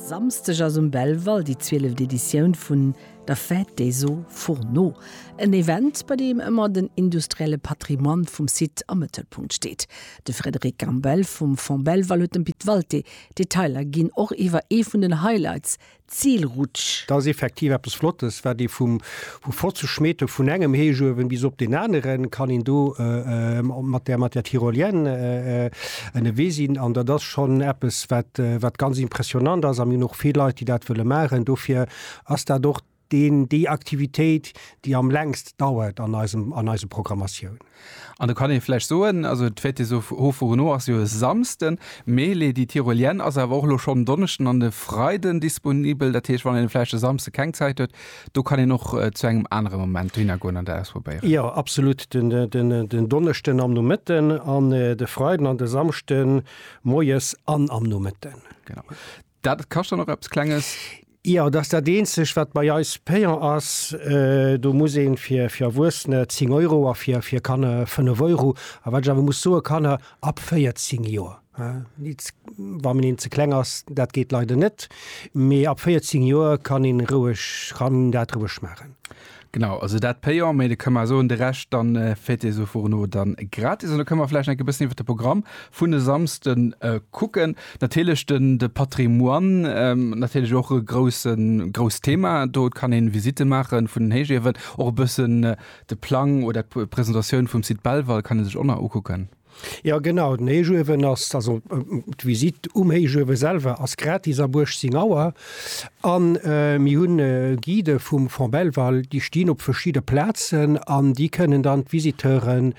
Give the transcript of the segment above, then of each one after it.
Samsdeg ass um Belval déi zwieleft Editioun vun der Fête des Eaux Fourneaux. En Event, bei deem ëmmer den industrielle Patrimoine vum Site am Mëttelpunkt steet. De Frédéric Gambel vum Fonds Belval huet dem Pit Walté d'Detailer ginn, och iwwer ee vun den Highlights, Zil rutsch. Dat ass effektiv eppes Flottes, wat ee vum vu 50 Meter vun engem Héichuewen bis op deen aneren kann een do mat der mat der Tyrolienne ënnewee sinn. An dat ass schonn eppes, wat wat ganz impressionnant ass. A mir hunn och vill Leit, déi dat wëlle maachen. Dofir ass dat och deen déi Aktivitéit, déi am längst dauert an eisem an eise Programmatiounen. An do kann ee vläicht soen, also d'Fête des Hauts-Fourneaux ass jo e Samsden, mee Les Die Tyroliennes ass awer och elo schonn en Donneschden an e Freiden disponibel. Dat heescht, wann een vläicht e Samsde keng Zäit huet, do kann een och zu engem anere Moment dohinner goen an dat ausprobéieren. Jo, absolut. Den Donneschden am Nomëtten an de Freiden an de Samschde moies an am Nomëtten. Genau. Dat kascht dann och eppes Klenges? Jo, dat ass dat eenzegt, wat bei eis payant ass. Do muss ee fir Erwuessene 10 Euro a fir Kanner 5 Euro. A wat ech awer muss soen, Kanner ab 14 Joer, wa een ze kleng ass, dat geet leider net, mee ab 14 Joer kann een roueg, kann een dat roueg maachen. Genau, also dat payant, mee da kënne mer soen, de Rescht dann féiert Dir sou fuer no dann gratis. An da kënne mer vläicht nach enke bëssen iwwert de Programm vun e Samsden kucken. Natierlech den de Patrimoine, natierlech och e groussen, grousst Thema do. Et kann een Visite maachen vun den Héichiewen, och e bëssen de Plang oder d'Presentatioun vum Site Belval kann ee sech och nach ukucken. Jo genau, den Héichuewen ass, also d'Visitt um Héichuewe selwer ass gratis ab 18 Auer. An mir hunn Guidë vum Fonds Belval, déi stinn op verschidde Plazen an déi kënnen dann d'Visiteuren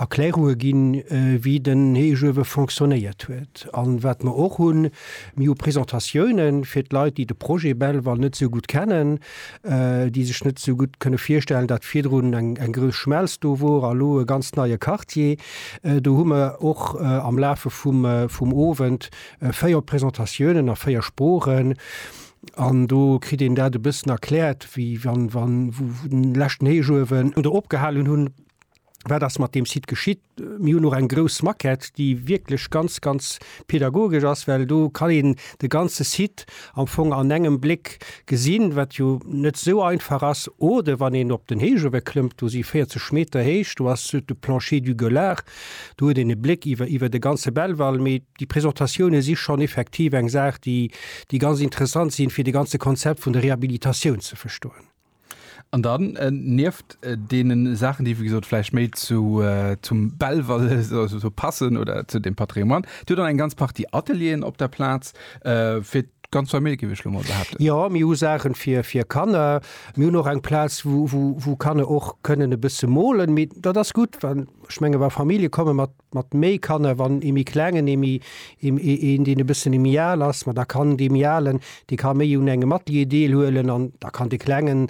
Erklärunge ginn, wéi den Héichuewe fonctionnéiert huet. An wat mer och hunn, mir hu Presentatiounen fir d'Leit, déi de Projet Belval net esou gutt kennen. déi sech net esou gutt kënne virstellen, datt virdrun eng grouss Schmelz do wor a lo e ganz neie Quartier. Do hu mer och am Lafe vum Owend véier Presentatiounen a véier Sproochen. An do kritt een dat e bëssen erkläert, wéi wann, wann, wou den leschten Héichuewen do opgehalen hunn. wat ass mat dem Site geschitt. Mir hunn och eng grouss Maquette, déi wierklech ganz, ganz pedagogesch ass, well do kann een de ganze Site am Fong an engem Bléck gesinn, wat jo net esou einfach ass. Oder wann een op den Héichuewe klëmmt, do si 40 Meter héich, do ass de Plancher du Gueulard, do huet een e Bléck iwwer iwwer de ganze Belval. Mee déi Presentatioune si schonn effektiv eng Saach, déi ganz interessant sinn, fir de ganze Konzept vun der Rehabilitatioun ze verstoen. An dann, nieft deene Saachen, déi wéi gesot vläicht méi zu, zum Belval esou passen oder zu dem Patrimoine, Dir hutt dann eng ganz Partie Atelieren op der Plaz fir d'ganz Famill, géif ech elo mol behaapten? Jo, mir hu Saachen fir Kanner. Mir hunn och eng Plaz, wou Kanner och kënnen e bësse molen. Mee dat ass gutt, well ech menge wa Famillje komme mat mat méi Kanner, wann ee méi klengen, ee méi, een deen e bëssen méi al ass, ma da kann dee méi alen, dee ka méi un engem Atelier deelhuelen an da kann de klengen,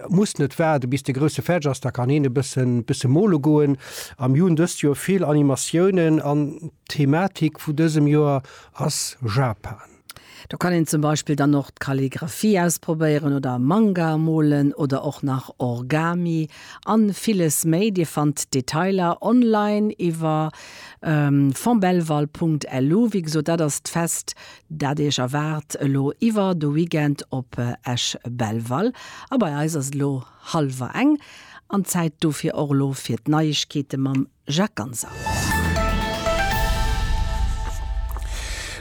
muss net waarde bis de grousse fäerdeg ass, da kann hien e bëssen, bësse mole goen. A mir hunn dëst Joer vill Animatiounen an d'Thematik vu dësem Joer ass Japan. Do kann een zum Beispill dann och d'Kalligraphie ausprobéieren oder Manga molen oder och nach Orgami an villes méi. Dir fannt d'Detailer online iwwer fontbelval.lu. Wéi gesot, dat ass d'Fest dat iech erwaart elo iwwer de Weekend op Esch-Belval. A bei eis ass et elo hallwer eng an d'Zäit dofir och elo fir d'Neiegkeete mam Jacques Ganser.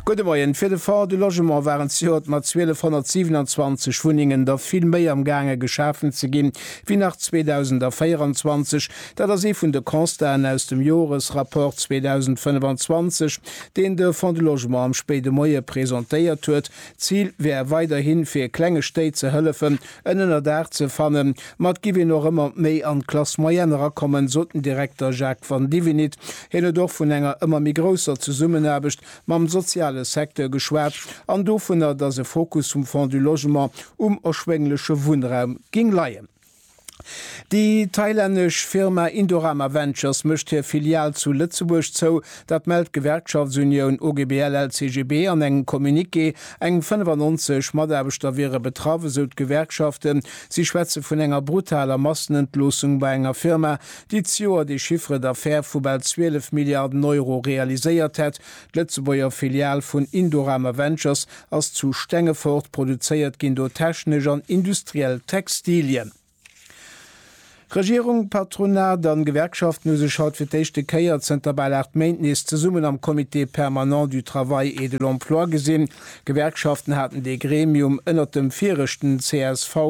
Gudde Moien. Fir de Fonds du Logement waren zejoert mat 1227 Wunnengen der vill méi am gaange geschafen ze ginn, wéi nach 2024. Dat ass ee vun de Constaten aus dem Joresrapport 2025, deen de Fonds du Logement am spéide Moie presentéiert huet. D'Zil wär weiderhi fir klenge Stéit ze hëllefen, en Ënnerdaach ze fannen, ma et giff een och ëmmer méi an d'Classe moyenne erakommen, sot den Direkter Jacques Vandivinit. Hien huet och vun enger ëmmer méi grousser Zesummenaarbecht mam soziale Secteur geschwat an dovunner, datt e Fokus vum Fonds du Logement um erschwéngleche Wunnraum géing leien. Déi thailännesch Firma Indorama Ventures mécht hir Filial zu Lëtzebuerg zou, Dat mellt d'Gewerkschaftsunioun OGBL-LCGB an engem Communiqué. Eng 95 Mataarbechter wiere betraff, esou d'Gewerkschaften. Si schwätze vun enger brutaler Massenentloossung bei enger Firma, déi d'Joer de Chiffre d'affaires vu bal 12 Milliarden Euro realiséiert hätt. D'Lëtzebuerger Filial vun Indorama Ventures ass zu Stengefort, produzéiert ginn do technesch an industriell Textilien. Regierung, Patronat an Gewerkschaften hu sech haut fir d'éischte Kéier zënter bal 8 Méint nees zesummen am Comité permanent du travail et de l'emploi gesinn. D'Gewerkschaften haten dee Gremium ënnert dem vireschten csv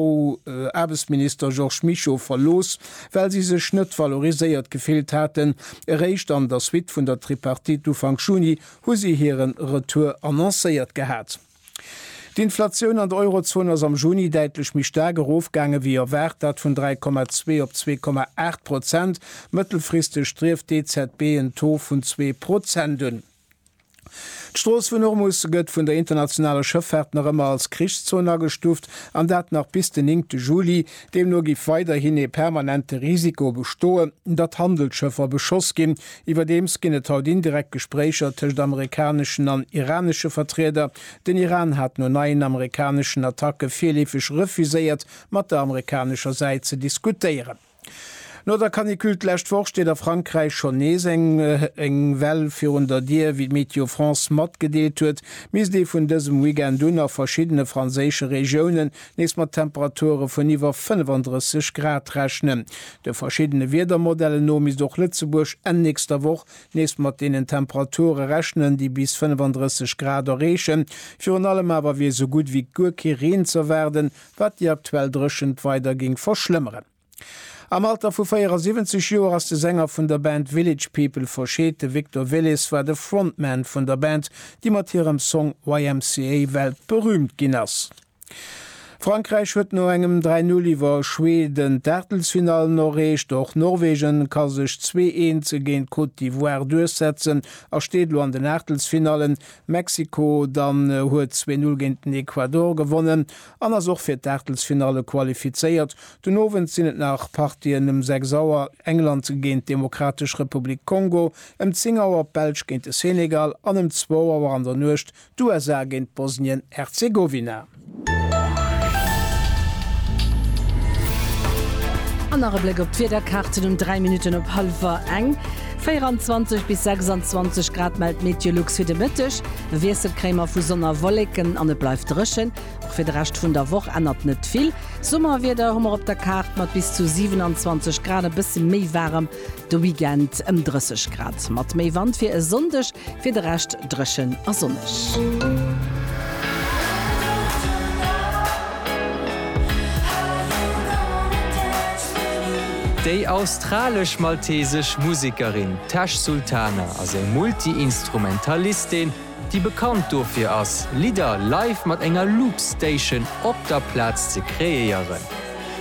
Aarbechtsminister Georges Mischo verlooss, well si sech net valoriséiert gefillt haten. Eréischt an der Suite vun der Tripartite Ufank Juni hu si hire Retour annoncéiert gehat. D'Inflatioun an der Eurozon ass am Juni däitlech méi staark erofgaange wéi erwaart, dat vun 3,2 op 2,8 Prozent. Mëttelfristeg strieft d'EZB en Taux vun zwee Prozent un. D'Strooss vun Hormus gëtt vun der internationaler Schëffaart nach ëmmer als Krichszon agestuuft, an dat nach bis den 9 Juli. Deemno géif weiderhin ee permanente Risiko bestoen, datt Handelsschëffer beschoss ginn, Iwwerdeems ginn et haut indirekt Gespréicher tëscht amerikaneschen an iranesche Vertrieder. Den Iran hat no neien amerikaneschen Attacke virleefeg refuséiert, mat der amerikanescher Säit ze diskutéieren. No der Canicule d'lescht Woch steet a Frankräich schonn nees eng eng Well virun der Dier. Wéi d'Météo France matgedeelt huet, misst ee vun dësem Weekend un a verschiddene franséische Regiounen nees mat Temperature vun iwwer 35 Grad rechnen. De verschiddene Wiedermodellen no misst och Lëtzebuerg Enn nächster Woch nees mat deenen Temperature rechnen, déi bis 35 Grad erreechen. Virun allem awer wier esou gutt ewéi guer kee Reen z'erwaarden, wat déi aktuell Dréchent weider géing verschlëmmeren. Am Alter vu 74 Joer ass de Sänger vun der Band Village People verscheet. De Victor Willis war de Frontman vun der Band, déi mat hirem Song YMCA weltberüümt ginn ass. Frankräich huet no engem 3 Null iwwer Schweden d'Aachtelsfinallen erreecht. Och Norwegen ka sech zwee Eens géint d'Côte d'Ivoire duerchsetzen a steet elo an den Aachtelsfinallen. Mexiko dann huet zwee Null géint den Ecuador gewonnen. an ass och fir d'Aachtelsfinalle qualifizéiert. Den Owend sinn et nach Partien, ëm 6 Auer England géint d'Demokratesch Republik Kongo, ëm 10 Auer d'Belsch géint de Senegal an ëm zwou Auer an der Nuecht d'USA géint Bosnien-Herzegowina. An nach e Bléck op d'Wiederkaarten um 3 Minutten op hallwer eng. 24 bis 26 Grad mellt d'Meteolux fir de Mëtteg. De Wiessel kréime vu Sonn a Wolleken an et bleift dréchen. Och fir de Rescht vun der Woch ännert net vill. D'Summerwieder hu mer op der Kaart mat bis zu 27 Grad, e bësse méi waarem de Weekend, ëm 30 Grad mat méi Wand fir e Sonndeg. Fir de Rescht dréchen a sonneg. Déi australesch-maltesesch Musekerin Tash Sultana ass eng Multi-Instrumentalistin, déi bekannt dofir ass, Lidder live mat enger Loop Station op der Plaz ze kreéieren.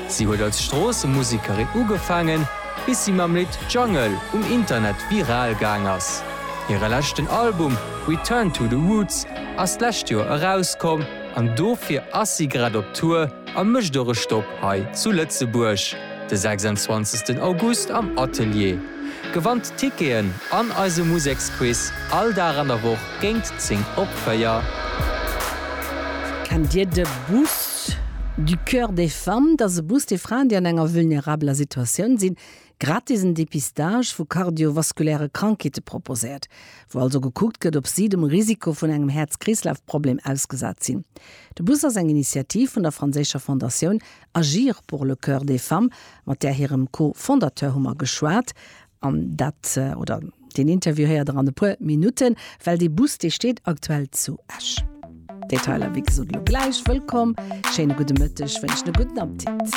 Si huet als Stroossemusekerin ugefaangen, bis si mam Lidd Jungle um Internet viral gaang ass. Hire leschten Album Return to the Roots ass d'lescht Joer erauskomm an dofir ass si grad op Tour a mécht och e Stopp Hei zu Lëtzebuerg de 26 August am Atelier. Gewannt Ticketen an eise Museksquiz all Dag an der Woch géingt 10 op 4. Kennt Dir de Bus du Coeur des Femmes? Dat ass e Bus, dee Fraen, déi an enger vulnerabeler Situatioun sinn, gratis en Dépistage vu kardiovaskuläre Krankheete proposéiert, wou also gekuckt gëtt, ob si dem Risiko vun engem Häerz-Kreeslaf-Problem ausgesat sinn. De Bus ass eng Initiativ vun der franséischer Fondatioun Agir pour le cœur des femmes, mat där hirem Co-Fondateur hu mer geschwat, an dat, oder deen Interview héiert der an e puer Minutten, well dee Bus, dee steet aktuell zu Esch. Detailer, wéi gesot, elo gläich. Wëllkomm, schéine gudde Mëtteg, wënschen e gudden Appetit.